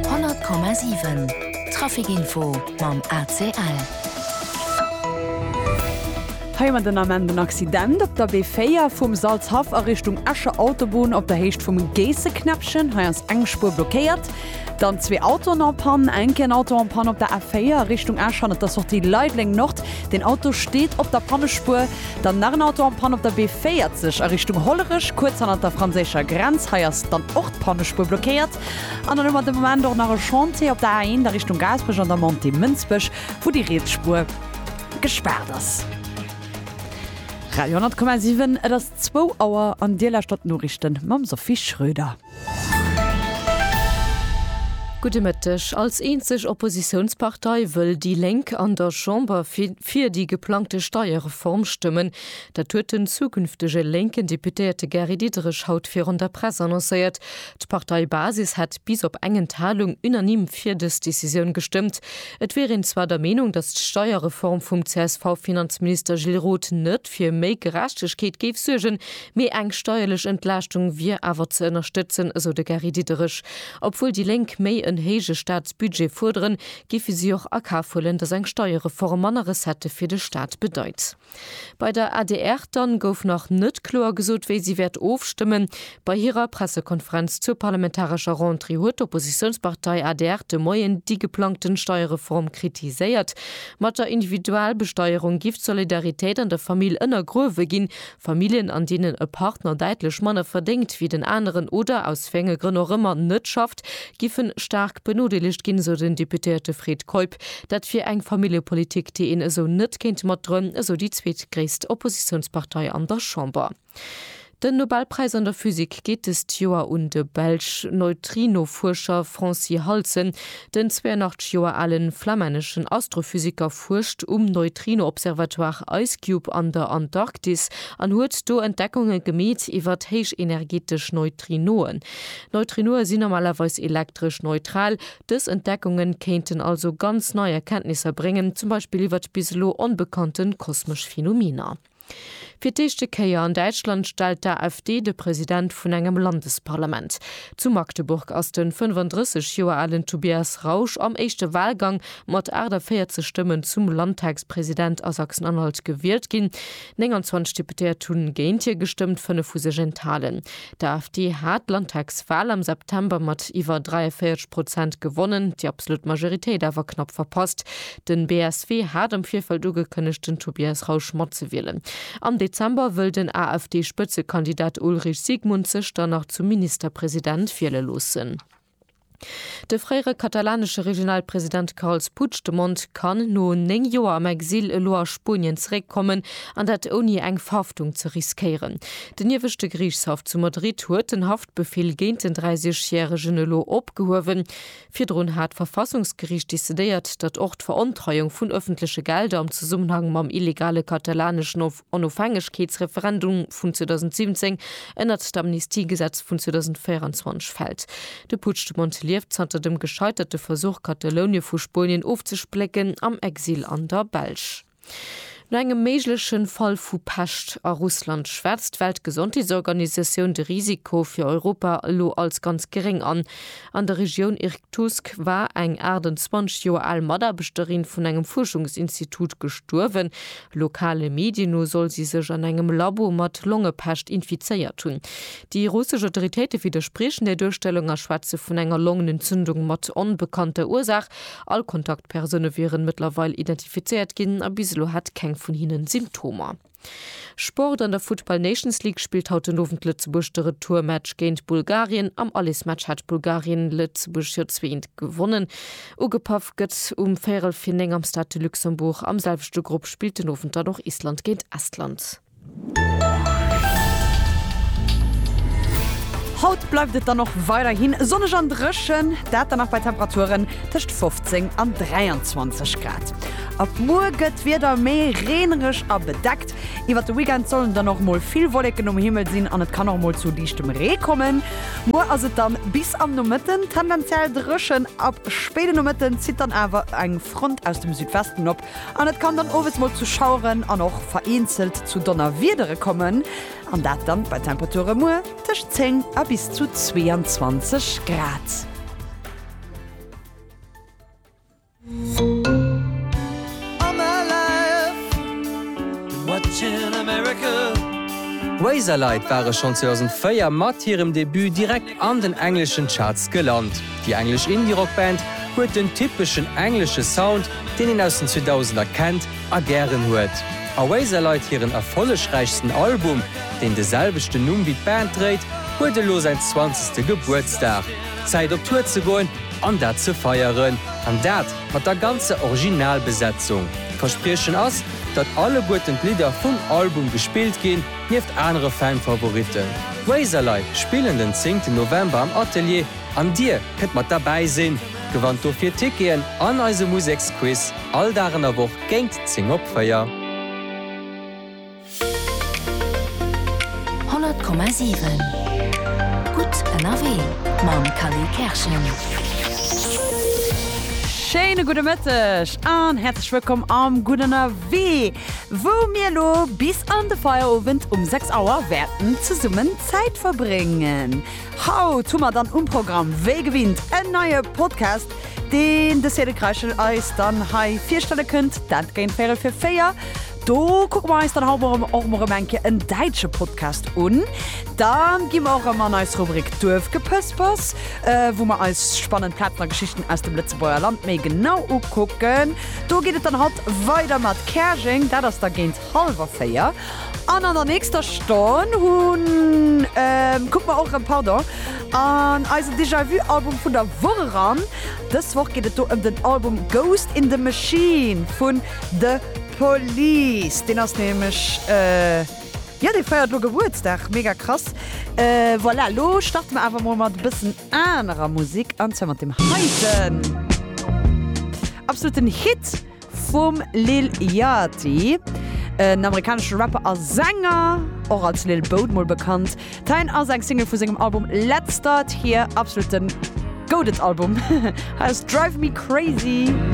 100,7 Traficinfo mam ACL. Hei mat den Ament en Accident op der B4 vum Salzhaff a Richtung Escher Autobunn op der Héicht vum Geesseknäppchen. Hei ass eng Spuer blockéiert. Dann zwee Autoen en Panne, enke en Auto en Panne op der A4 a Richtung Esch an op der Sortie Leideleng Nord. Den Auto steet op der Pannespuer. Dann nach en Auto en Panne op der B40 a Richtung Hollerech, kuerz hannert der franséischer Grenz. Hei ass dann och d'Pannespuer blockéiert. An dann hu mer de Moment och nach e Chantier op der A1 a Richtung Gaasperech an der Montée Mënsbech, wou déi riets Spuer gespaart ass. Radio 10,7, Et ass zwou Auer an Dir lauschtert d'Noriichten mam Sophie Schröder. Gudde Mëtteg. Als eenzeg Oppositiounspartei wëll déi Lénk an der Chamber fir déi geplangte Steierreform stëmmen. Dat huet den zukünftege lénken Deputéierte Gary Diderich haut virun der Press annoncéiert. D'Parteibasis hätt bis op eng Enthalung unanime fir dës Decisioun gestëmmt. Et wier een zwar der Meenung, datt d'Steierreform vum CSV-Finanzminister Gilles Roth net fir méi Gerechtegkeet géif suergen, Mee eng steierlech Entlaaschtung wier awer ze ënnerstëtzen, esou de Gary Diderich. Obwuel déi Lénk méi en héije Staatsbudget fuerderen, géife si och a Kaf huelen, datt eng Steierreform manner Recettë fir de Staat bedeit. Bei der adr dann gouf nach net kloer gesot, wéi si wäert ofstëmmen. Bei hirer Pressekonferenz zur parlamentarescher Rentrée huet d'Oppositiounspartei adr de Moien déi geplangten Steierreform kritiséiert. Mat der Individualbesteierung giff d'Solidaritéit an der Famill ënnergruewe ginn, Familljen, an deenen e Partner däitlech manner verdéngt wéi den aneren oder aus wéi enge Grënn och ëmmer net schafft, giffen staark benodeelegt ginn, esou den Deputéierte Fred Keup. Dat wier eng Familljepolitik, déi een esou net kéint matdroen, esou déi zweetgréisst Oppositiounspartei an der Chamber. Den Nobelpräis an der Physik geet dëst Joer un de belsch Neutrinofuerscher Francy Halsen, den 82 Joer alen flamänneschen Astrophysiker, fuerscht um Neutrino-Observatoire IceCube an der Antarktis an huet do Entdeckunge gemeet iwwert héichenergetesch Neutrinoen. Neutrinoe si normalerweis elektresch neutral. Dës Entdeckunge kéinten also ganz nei Erkenntnisser bréngen, zum Beispill iwwert bis elo onbekannte kosmesch Phenomener. Fir d'éischte Kéier an Däitschland stellt d'AfD de President vun engem Landesparlament. Zu Magdeburg ass den 35 Joer alen Tobias Rausch am éischte Walgang mat 48 Stëmmen zum Landtagspresident a Sachsen-Anhalt gewielt ginn. 29 Deputéiert hunn géint hie gestëmmt, fënnef hu sech enthalen. D'AfD hat d'Landtagswal am September mat iwwer 43 Prozent gewonnen, déi absolut Majoritéit awer knapp verpasst. Den BSW hat am Virfeld ugekënnegt den Tobias Rausch matzewielen. Am Dezember wëll den AfD-Spëtzekandidat Ulrich Siegmund sech dann nach zum Ministerpresident wiele loossen. De fréiere katalanesche Regionalpresident Carles Puigdemont kann no 9 Joer am Exil elo a Spuenien zeréckkommen, an dat ouni eng Verhaftung ze riskéieren. Den ieweschte Geriichtshaff zu Madrid huet den Haftbefeel géint den 30 järegen elo opgehuewen. Virdrun hat d'Verfassungsgeriicht decidéiert, datt och d'Verontreiung vun ëffentleche Gelder am Zesummenhang mam illegale katalaneschen Onofhängegkeetsreferendum vun 2017 ënnert d'Amnistiegesetz vun 2024 fält. De Puigdemont lieft zanter dem gescheiterte Versuch, Katalounien vu Spuenien ofzesplécken, am Exil an der Belsch. No engem méigleche Fall vu Pescht a Russland schwätzt d'Weltgesondheetsorganisatioun de Risiko fir Europa elo als ganz geréng an. An der Regioun Irktusk war eng 28 Joer al Mataarbechterin vun engem Fuerschungsinstitut gestuerwen, Lokale Medien no soll si sech an engem Labo mat Longepescht infizéiert hunn. Déi russesch Autoritéite widderspriechen där Duerstellung a schwätze vun enger Longenentzündung mat onbekannter Ursaach. All Kontaktpersoune wieren mëttlerweil identifizéiert ginn a bis elo hat keng vun hinnen Symptomer. Sport, An der Futtball Nations League spillt haut den Owend Lëtzebuerg de Retourmatch géint Bulgarien. Am Allesmatch hat Bulgarien Lëtzebuerg jo zwee 1 gewonnen. Ugepaff gëtt um véierel fir 9 am Stade de Luxembourg. Am selwechte Grupp spillt den Owend dann och Island géint Estland. Haut bleift et dann och weiderhi sonneg an dréchen, dat dann nach bei Temperaturen tëscht 15 an 23 Grad. Ab muer gëtt d'Wieder méi reenereg a bedeckt. Iwwert de Weekend sollen dann och mol vill Wolleken um Himmel sinn an et kann och mol zu liichtem Ree kommen. Muer ass et dann bis am Nomëtten tendenziell dréchen. Ab spéiden Nomëtten zitt dann awer eng Front aus dem Südwesten op an et kann dann owes mol zu Schaueren an och vereenzelt zu Donnerwiedere kommen an dat dann bei Temperature muer tëscht 10 a bis zu 22 Grad. Razorlight ware schonn 2004 mat hirem Debut direkt an den engleschen Charts gelant. Déi englesch Indie-Rock-Band huet den typeschen englesche Sound, deen een aus den 2000er kennt a gären huet. A Razorlight hiren erfollegräichsten Album, deen de selwechten Numm wéi d'Band dréit, huet elo säin zwanzegste Gebuertsdag. Zäit op Tour ze goen! An dat ze feieren, an dat mat der ganzer Originalbesetzung. D'Verspriechen ass, datt alleguerten d'Lidder vum Album gespillt ginn, nieft anere Fan-Favoritten. D'Razorlei spillen den zéngten November am Atelier an dir kënnt mat derbäi sinn. Gewannt dofir Ticketen an eise Museksquiz all Dag an der Woch géint 10 op 4. Honnert Komma siwen Gutt ënnerwee mam Kally Kerschen. Schéine gudde Mëtteg an häerzlech wëllkomm am Gutt ënnerwee, wou mir elo bis an de Feierowend um 6 Auer wäerten zesummen Zäit verbréngen. Haut hu mer dann um Programm wéi gewinnt en neie Podcast, deen de Cédric Reichel eis dann hei virstelle kënnt, dat géint véierel fir véier. Do kucke mer eis dann haut och mol erëm eng Kéier en däitsche Podcast un. Dann gi mer och erëm an eis Rubrik Duerfgepëspers, wou mer eis spannend Plazen a Geschichten aus dem Lëtzebuerger Land méi genau ukucken. Do geet et dann haut weider mat Käerjeng, dat ass da géint hallwer véier. An an der nächster Stonn hunn, kucke mer och erëm, pardon, an eisen Déjà-vu-Album vun der Woch eran. Dës Woch geet et do ëm den Album Ghost in the Machine vun. De Police, deen ass nämlech, jo, dee feiert elo Gebuertsdag, mega krass. Voilà, lo starte mer awer mol mat e bëssen anerer Musik, an zwar mat deem heiten absoluten Hit vum Lil Yachty, en amerikanesche Rapper a Sänger, och als Lil Boat mol bekannt. D'Haine ass eng Single vu sengem Album Let's Start Here, absoluten Goated-Album. Hei ass Drive Me Crazy.